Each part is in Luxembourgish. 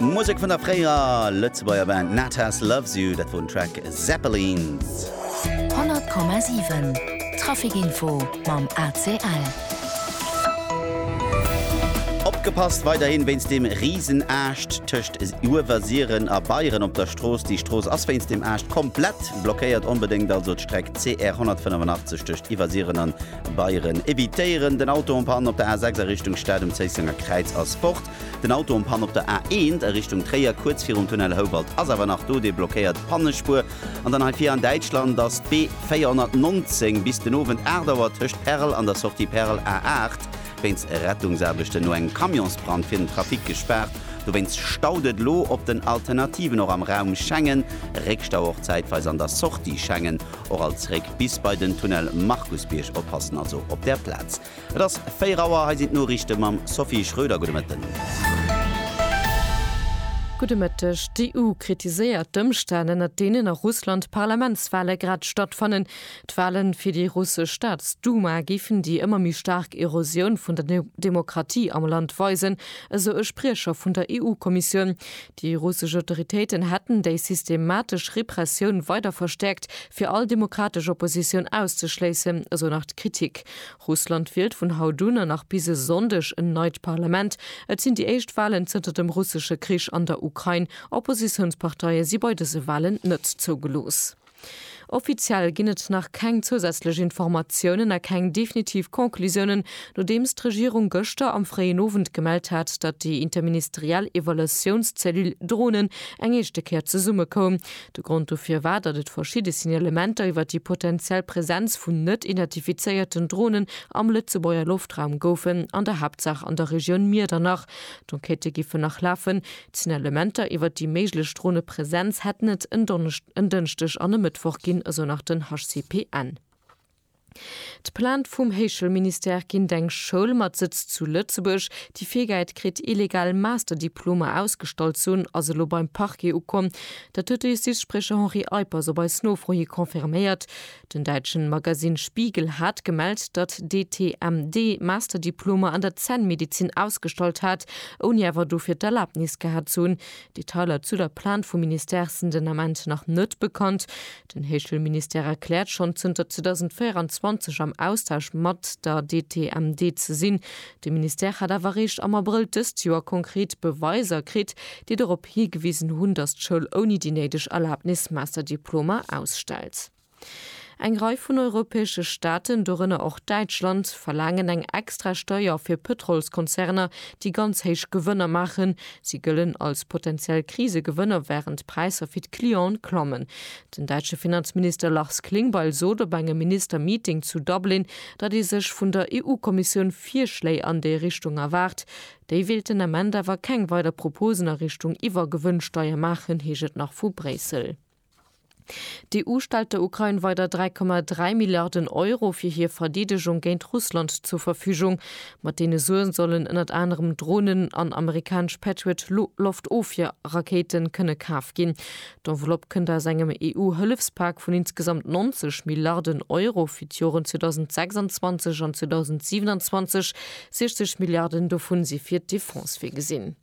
Musek vun der fréierer Lëtzebuerger Band Natas Loves You, dat wor den Track Zeppelins. 100,7 Trafic Info mam ACL. Opgepasst weiderhin wéinst dem Risenaascht tëscht Uewersiren a Beieren op der Strooss. Déi Strooss ass wéinst dem Aascht komplett blockéiert. Onbedéngt also d'Streck CR 185 tëscht Iwwersiren an Beieren, Evitéieren den Auto en Panne op der A6 a Richtung Stad um Zéissenger Kräiz ass fort. Den Auto en Panne op der A1 a Richtung Tréier kuerz virum Tunnel Houbalt ass awer nach do, dee blockéiert d'Pannespuer. An dann hei vir an Däitschland ass d'B 419 bis den Owend 8 Auer tëscht Perl an der Sortie Perl A8 wéinst Rettungsaarbechten no engem Camionsbrand fir den Trafic gespaart. Dowéinst staut et elo op den Alternativen och am Raum Schengen, Réckstau och zäitweis an der Sortie Schengen. Och alt zréck bis bei den Tunnel Markusbierg, oppassen also op der Plaz. Et ass 4 Auer, hei sinn d'Noriichte mam Sophie Schröder. Gudde Mëtten. Gudde Mëtteg. D'EU kritiséiert d'Ëmstänn, ënner deenen a Russland d'Parlamentswale grad stattfannen. D'Wale fir déi russesch Staatsduma géifen déi ëmmer méi staark Erosioun vun der Demokratie am Land weisen, esou e Spriecher vun der EU-Kommissioun. Déi russesch Autoritéiten hätten déi systematesch Repressioun weider verstäerkt, fir all demokratesch Oppositioun auszeschléissen, esou nach d'Kritik. Russland wielt vun haut un an nach bis e Sonndeg en neit Parlament. Et sinn déi éischt Walen zënter dem russesche Krich an der Ukrain. Oppositiounsparteie si bei dëse Walen net zougelooss. Offiziell ginn et nach keng zousätzlech Informatiounen a keng definitiv Conclusiounen, nodeems d'Regierung gëschter am fréien Owend gemellt hat, datt déi interministeriell Evaluatiounszellule Dronen eng éischte Kéier zesummekoum. De Grond dofir war, datt et verschidde Signalementer iwwer déi potenziell Presenz vun net identifizéierten Dronen am Lëtzebuerger Loftraum goufen, an der Haaptsaach an der Regioun Miedernach. D'Enquêtë giffen nach lafen. D'Signalementer iwwer déi méiglech Dronepresenz hätten et en Dënschdeg an e Mëttwoch ginn, esou nach den HCPN. D'Plainte vum Héichelministère géint eng Schoul mat Sëtz zu Lëtzebuerg, déi virgäit kritt, illegal Masterdiplomer ausgestallt ze hunn, ass elo beim Parquet ukomm. Dat huet de Justizspriecher Henri Eippers op eis Nofro hi confirméiert. Den däitschen Magasinn Spiegel hat gemellt, datt d'ETMD Masterdiplomer an der Zännmedizin ausgestallt hat, ouni awer dofir d'Erlaabnis gehat ze hunn. Detailer zu der Plainte vum Ministère sinn den Ament nach net bekannt. Den Héichschoulministère erkläert schonn zënter 2024 am Austausch mat der DTMD ze sinn. De Ministère hat awer eréischt am Abrëll dëst Joer konkret Beweiser kritt, déi dorop higewisen hunn, datt d'Schoul ouni déi néideg Erlabnis Masterdiplomer ausstellt. Eng Rei vun europäesche Staaten, dorënner och Däitschland, verlaangen eng extra Steuer fir Pëtrolskonzerner, déi ganz héich Gewënner maachen. Si gëllen als potenziell Krisegewënner, wärend d'Präisser fir d'Clienten klammen. Den däitsche Finanzminister Lars Klingbeil sot op engem Minister-Meeting zu Dublin, datt ee sech vun der EU-Kommissioun Virschléi an déi Richtung erwaart. Déi wéilt den Ament awer keng weider Proposen a Richtung Iwwergewënnsteier maachen, heescht et nach vu Bréissel. D'EU stellt der Ukrain weider 3,3 Milliarden Euro fir hir Verdeedegung géint Russland zur Verfügung. Mat deene Suen sollen ënnert anerem Dronen an amerikanesch Patriot-Loftofwier-Rakéiten kënne kaf ginn. D'Enveloppe kënnt aus engem EU-Hëllefspak vun insgesamt 90 Milliarden Euro fir d'Joren 2026 an 2027. 60 Milliarden dovun si fir d'Defense virgesinn.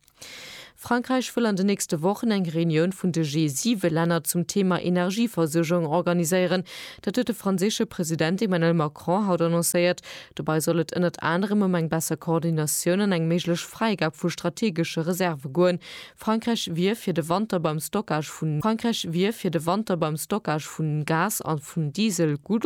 Frankräich wëll an de nächste Wochen eng Reunioun vun de G7-Länner zum Theema Energieversuergung organiséieren. Dat huet de franséische President Emmanuel Macron haut annoncéiert. Dobäi soll et ënnert anerem ëm eng besser Koordinatioun an eng méiglech Fräigab vu strategesche Reserve goen, Frankräich wier fir de Wanter beim Stockage vun Frankräich wier fir de Wanter beim Stockage vun Gas a vun Diesel gutt